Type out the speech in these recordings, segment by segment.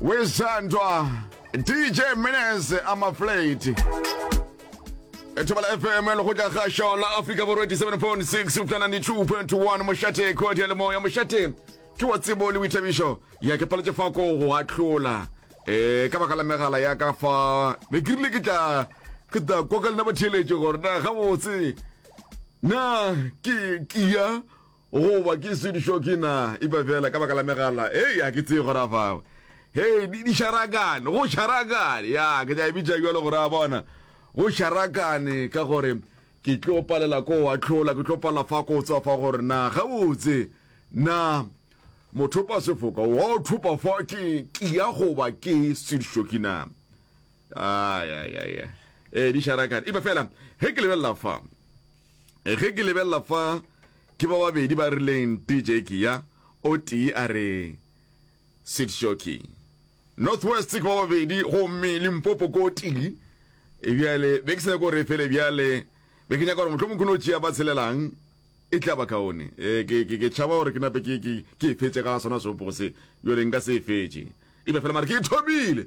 wizandwa dj mines amaflate ethobela fm le go tla ga šona africa borwa 87.6 upta 92.1 mošate kodi ya lemoya mošate ke wa tsebo le boithabišo ya ke paletše fa ko go ahlola um ka baka la megala ya ka fa be ke rile ke tla ke tla kwa ka lena batheeletše gore na gabotse na ke ke ya Goba ke Swedish hockey na? Epa fela ka baka la megala, hei, ga ke tsebe go ra fago. Hei, di, di šarakane, go šarakane, ya, ke tla e bitša bjalo go ra bona. Go šarakane ka gore ke tlo palela ko wa tlhola, ke tlo palela fa ko tswa fa gore na, gabotse, na mothopa sefoka wa o thopa fa ke tlia goba ke Swedish hockey na? Ai, ai, ai, ai. Ee, di šarakane. Epa fela, ge ke lebelela fa, Ge ke lebelela fa, ke ba babedi ba rileng tee Jackie ya, o tee a re Sid Shoki. North West ke ba babedi gomme Limpopo ko tee. E bjale be ke se nyaka gore e fele bjale, be ke nyaka gore mohlomong ke no tšea ba tselelang e tla ba kaone. E, ke, ke, ke tšhaba gore ke nape ke, ke, ke e fetše ga sona seopogo se, bjale nka se e fetše. Epa fela mare ke e thomile.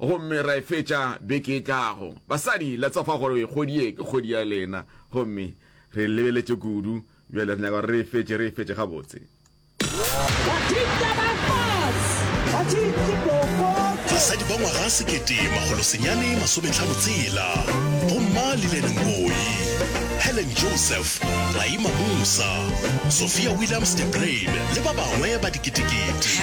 Gomme ra e fetša beke e tlago. Basadi, let's ofa gore kgwedi ye ke kgwedi ya lena. Gomme re e lebeletše kudu. Bjale re nyaka gore re e fetše, re e fetše gabotse. Basadi ba ngwaga sekete makgolo senyane masometlhano tshela, Bomma Lillian Ngoyi, Helen Joseph, Raima Musa, Sophia Williams de Bruyn le ba bangwe ba diketekete.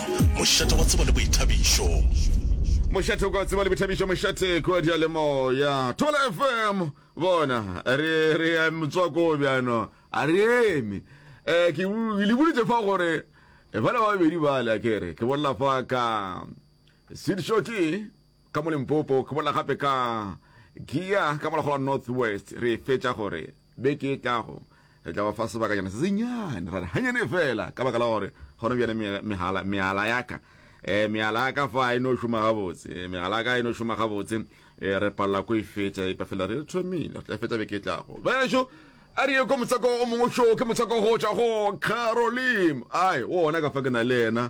Mošate wa tsebo le boithabišo. Mošate kwa tseba le bothabišo mošate kwa diyalemoya Thole FM bona re re ya motswako bjano a re eme um ke le boditse fa gore bala ba babedi bale a kere ke bolela fa ka seed shorty Ka mo Limpopo ke bolela gape ka Giya ka morago la North West. Re e fetša gore beke e tlago re tla ba fa sebakanyana se senyane, ra re hanyane fela ka baka la gore gona bjana mehala, mehala ya ka eh, mehala ya ka fa a e no šoma gabotse, eh, mehala ya ka a e no šoma gabotse, eh, re palela ko e fetša epa fela re thomile, re tla e fetša beke e tlago. Bešo a re ye ko motswako o mongwe šoo ke motswako go tšwa go Carolim, ai o ona ka fa ke na le yena.